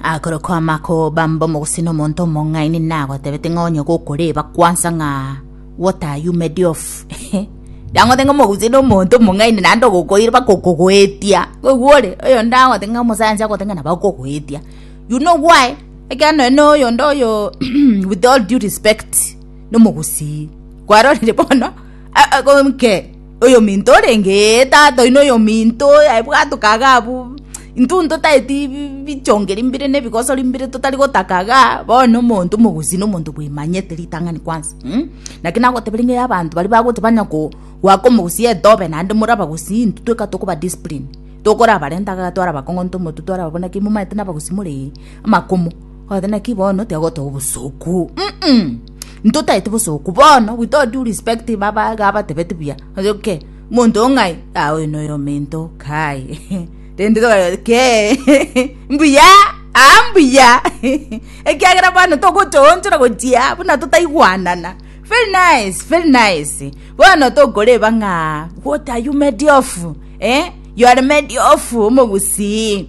Akorokwa amakoba mb'omogusii nomonto omong'aini nagotebete ng'a onye gokoreba kwansa ng'a what are you made of Nagote ng'a omogusii nomonto omong'aini naende ogokoire bakokogoetia oigwore oyonde agote ng'a omosayansi agote ng'a nabakogoetia you know why ekiagera nonye na oyonde oyo with all due respect nomogusii kwarorire bono a- a- gonke. Oyominto orenge, ee, tata oino oyominto, ebwato kaga abwo, intwe ntotaeti bichongeri mbire na ebigosori mbire totari gotaka iga, bono omonto omogusii na omonto bwemanyete ritang'ani kwanza mh, naki nagotebia ring'o ya abanto baria bagocha banya ko goaka omogusii etobe naende more abagusii intwe tweka tokoba discipline, tokorabarenta iga twarabakong'onta omotwe twarababua naki momanyete na abagusii more ee, amakumu, ogoteba naki bono tiga gotoa obosuku, mm. Ntotaete bosoku bono with all due respect baba iga abatebeti buya okay monto oo ng'ai ah oyo noyo omento kai rende tokareba kee mbuya aa mbuya ekiagera bono togochoonchora gochia buna totaigwanana very nice very nice bono tokoreba ng'a what are you made of eh you are made of omogusii.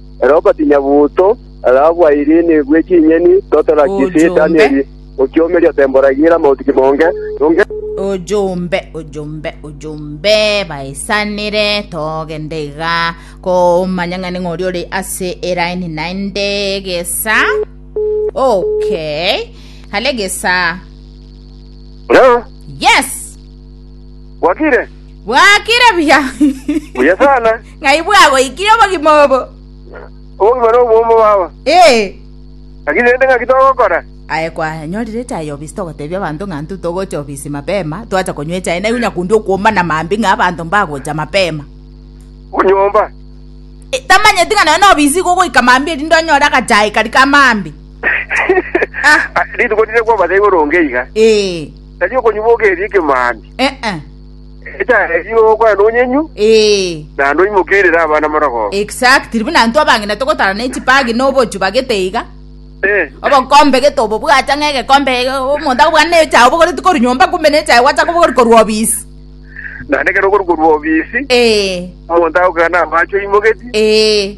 Ere ogatinya buuto, rabu airine bwe chinyeni totera kisi Danieli okiomeria temboragira amauti kimonge, nonge Ojombe, ojombe, ojombe, baesanire, togende iga, komanya ng'ani ng'ori ore ase eraini naende gesa. Okay. Hale gesa. Leo Yes! bwakire Bwakire buya. buya sana Ng'ai bwagoikirie obogima obo? Obogima nobomo, baba. Ee. Naki rende ng'aki togokora? Aye kwanyorire echae y'obisi togotebia abanto ng'a intwe togocha obisi mapema, twacha konywa echae na igwa nyakundi okwomba na mambia ng'a abanto mbagocha mapema. Onyomba? Ee, tamanyeti ng'a nonye nobisi igo ogoika mambia erinde onyore agachae kari ka mambia. Ah. Rituko rire kwobasa igoro onge iga. Ee. Tari okonywa boka erio ekemambia. Eh, eh. Ekechareria ogokwana onyenyu, Ee. naende oimokerere abana marogoba. Exactly. Buna intwe abang'ina togotarana echipagi na obochu bagete iga. Eh, Obokombe gete obobwate ng'a egekombe omonto akobwana na echae obogoreti korwa nyomba kumbe na echae gwacha kobogori korwa obisi. naende ekero okorwa korwa obisi, Ee. omonto agokana amache oimoketie, Ee.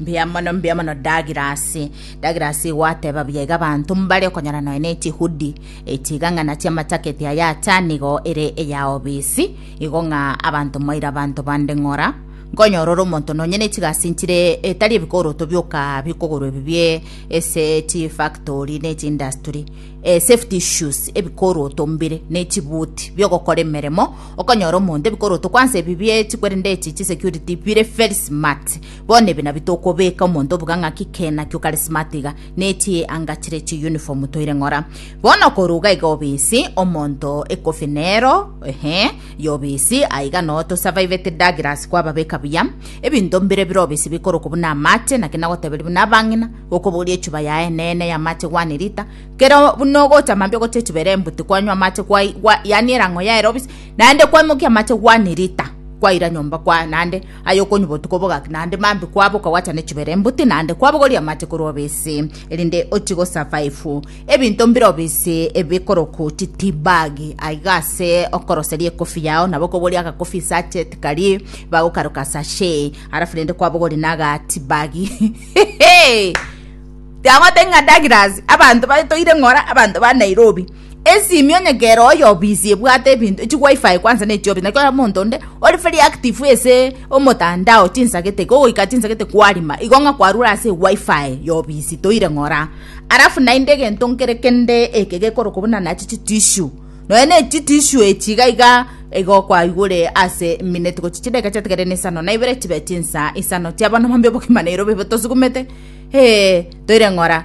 Mbuya mono, mbuya mono Douglas. Douglas igo ateba buya iga abanto mbare okonyora nonya ne chihudi echi iga ng'a nachio amataketi aya ata nigo ere eya obisi igo ng'a abanto mwaire abanto bande ng'ora nkonyora ore omonto nonya ne chigasi nchire etari ebikoroto bioka bikogorwa ebi bie ese chi factory ne chi industry eh, safety issues ebikoroto mbire ne chibuti biogokora emeremo okonyora omonto ebikoroto kwansa ebi bie chikwerende echi chi security bire very smart Bono ebi nabio tokobeeka omonto obuga ng'aki kena ki ukarismatiga, ne chi anga chire chi uniform toire ng'ora. Bono koruga iga obisi omonto ekofi nero, ehe, y'obisi, aiga no tosurviveti Douglas kwababeka buya. Ebinto mbire bire obisi bikorokwa buna amache, naki nagoteberia buna abang'ina, gokoboria echuba yaye eneene y'amache one liter, kero buna ogocha mambia ogocha echuba ere embuti kwanywa amache kwai- gwa- yaani erang'o yaere obisi, naende kwaimokia amache one liter kwaira nyomba kwa naende Aye okonywa botuko bogaki naende mambia kwaboka gwacha ne chibera embuti naende kwabogoria amache korwa obese, erinde ochie go survive ebinto mbire obese ebikorokwa chi tea bag aiga ase okoroseria ekofi yao nabo okoboria aga coffee sachet karie bagokaroka sachet alafu rende kwabogoria na aga tea bag Tiagotebi ng'a Douglas abanto batoire ng'ora abanto ba Nairobi. Esimi onye kere oyo obisi ebwate ebinto echi wifi kwanza ne chiobisi naki omonto onde ore very active ase omotandao chinsagete iga ogoika chinsagete kwarima igo ng'a kwarure ase wifi ya obisi toire ng'ora alafu naende egento nkere kende eke gekorokwa buna nachi chi tissue nonya ne chi tissue echi iga iga igo kwaigure ase eminute gochi chidakika chiatigare na isano na ibere chibe chinsa isano chiabo na mambia obogima nairo bobe tosugumete eh toire ng'ora.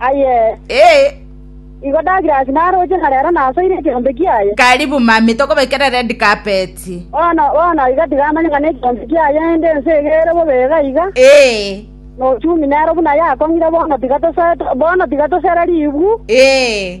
Aye. Ee. Igo ndagire ase naroche, na rero nasoire ekeombe kiaye. Karibu mami, tokobekere red carpet. Bono, bono iga tigamanye ng'a nekeombe kiaye ende ense egere bobe iga iga. Ee. Nochumi nero buna yakong'ire bono tiga tose, bono tiga tosere ribu. Ee.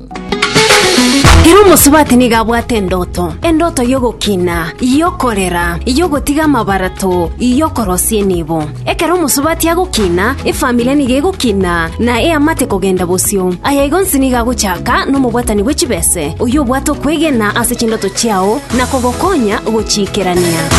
Ere omosubati nigo abwate endoto, endoto y'ogokina, y'okorera, y'ogotiga amabarato, y'okorosia enibo. Ekero omosubati agokina, efamiri nigo egokina na eamate kogenda bosio. Aya igo onsi nigo agochaka nomobwatani bwe chibese, oyio obwate okwegena ase chindoto chiao na kogokonya gochiikerania.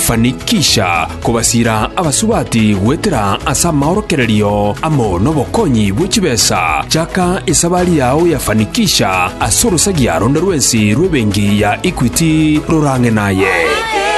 Fanikisha Kobasiira abasubati goetera ase amaorokererio amo nobokonyi bwe chibesa, chaka esabari yao ya fanikisha ase orosagia ronde rwensi rw'ebenki ya Equity rorang'e naye.